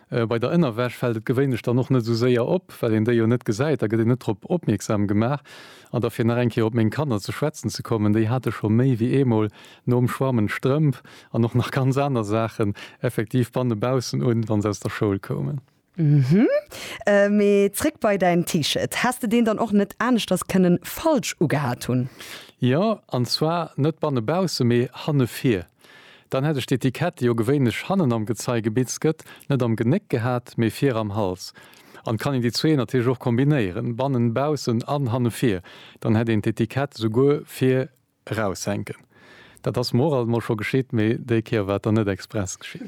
Bei der Ënnerwäsch fält et gewéinlech dann och net esou séier op, well een déi jo net gesäit, da gëtt een net drop opmierksam gemaach. An da fir nach eng Kéier op meng Kanner ze schwätzen ze kommen, déi hate scho méi wéi eemol nom Schwammen d'Strëmp an och nach ganz aner Saachen effektiv banne baussen un, wa se aus der Schoul koumen. Hm, mee zréck bei däin T-Shirt. Häss de deen dann och net aneschters kënnen falsch ugehat hunn? Jo, an zwar net banne baussen, mee hanne vir. Dann hätt ech d'Etikett, déi jo gewéinlech hannen am Gezei gebitzt gëtt, net am Genéck gehat, mee vir am Hals. An kann een déi zwee natierlech och kombinéieren, bannen, baussen an hanne vir, dann hätt een d'Etikett souguer vir raushänken. Dat ass mer och alt mol scho geschitt, mee déi Kéier war et dann net express geschitt.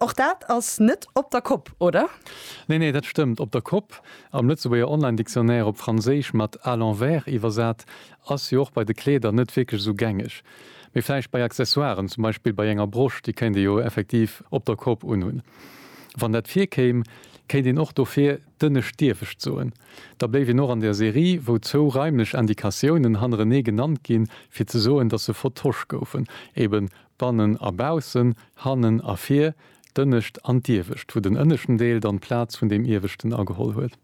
Och dat ass net op der Kopp, oder? Nee, nee, dat stëmmt. Op der Kopp, am Lëtzebuerger Online-Dictionnaire op Franséisch mat à l'envers iwwersat, Ass jo och bei de Kleeder net wierklech esou gängeg. Mee vläicht bei Accessoiren, zum Beispill bei enger Brosch, déi kéint ee jo effektiv op der Kopp unhunn. Wann dat virkéim, kéint een och dofir dënne Stierwescht soen. Da bléif een och an der Serie, wou zwou raimlech Indikatiounen hannerenee genannt ginn, fir ze soen, dass se vertosch goufen, ebe bannen a baussen, hannen a vir, d'Ënnescht an d'Iewescht, wou den ënneschten Deel dann d'Plaz vun deem Ieweschten ageholl huet.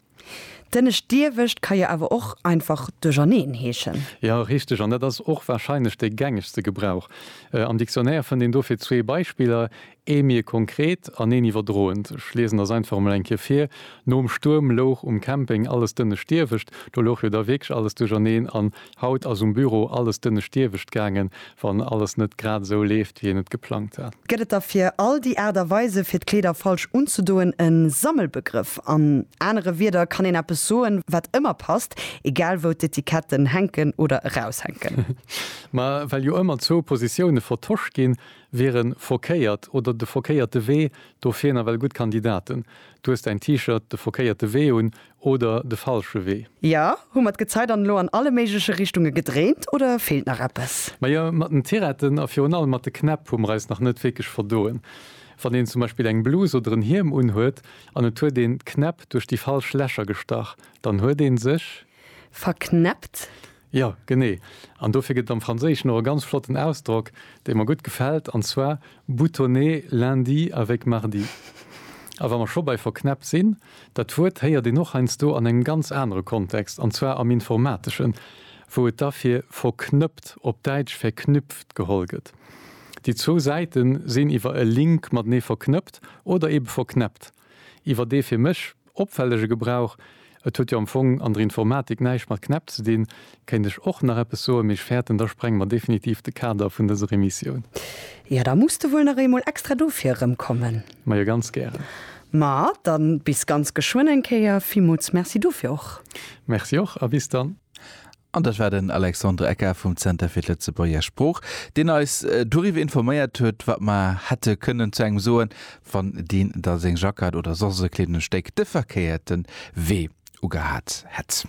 D'ënnescht Diewecht ka jo awer och einfach duercherneen heeschen. Jo, richteg. An dat ass och warscheinlech de gängegste Gebrauch. Am Dictionnaire fënnt een dofir zwee Beispiller, ee méi konkret an een iwwerdroend. Ech liesen der s'einfach emol eng Kéier vir, Nom Stuerm louch um Camping alles d'ënnescht Diewecht. Do louch jo da wierklech alles duercherneen an Haut ass um Büro alles dënnestiewegt gaangen, wann alles net grad esou leeft, wéi een et geplangt hat. Gëtt et da fir all déi Aart a Weise fir d'Kleeder falsch unzedoen e Sammelbegrëff? An anere Wieder kann een eppes soen, wat ëmmer passt, egal wou d'Etiketten hänken oder eraushänken. Ma well jo ëmmer zwou Positioune vertosch ginn, wiere verkéiert oder de verkéierte Wee dofir nawell gutt Kandidaten. Du hues däin T-Shirt de verkéierte Wee un oder de falsche Wee? Jo, hu mer d'Gezei dann elo an alle méigleche Richtunge gedréint oder feelt nach eppes? Majo, mat den Tiretten a virun allem mat de Knäpp hu mer eis nach net wierklech verdoen. Wann een zum Beispill eng Blus oder en Hiem unhuet an et huet een d'Knäpp duerch déi falsch Lächer gestach, dann huet ee sech. Verknäppt? Jo, genee. An dofir gëtt et am Franséischen och e ganz flotten Ausdrock, dee mer gutt gefält, an zwar boutonner lundi avec mardi. A wa mer scho bei verknäppt sinn, dat Wuert héiert een och heiansdo an engem ganz anere Kontext, an zwar am Informateschen, wou et da fir verknëppt, op Däitsch verknüpft, geholl gëtt. Déi zwou Säite sinn iwwer e Link matenee verknëppt oder ebe verknäppt iwwer dee fir mech, Opfällege Gebrauch, Et huet jo am Fong an der Informatik näischt mat Knäpp ze dinn, kéint ech och nach eppes soen, mee ech fäerten, da sprenge mer definitiv de Kader vun dëser Emissioun. Jo, da muss de wuel nach eemol extra dofir erëmkommen. Majo, ganz gären. Ma dann bis ganz geschwënn eng Kéier. Villmools Merci dofir och. Merci och a bis dann. An dat war den Alexandre Ecker vum Zenter fir d'Lëtzebuerger Sprooch, deen eis doriwwer informéiert huet, wat mer hätte kënnen zu engem soen, wann deen da seng Jacquard oder soss e Kleedungsstéck de verkéierte Wee ugehat hätt.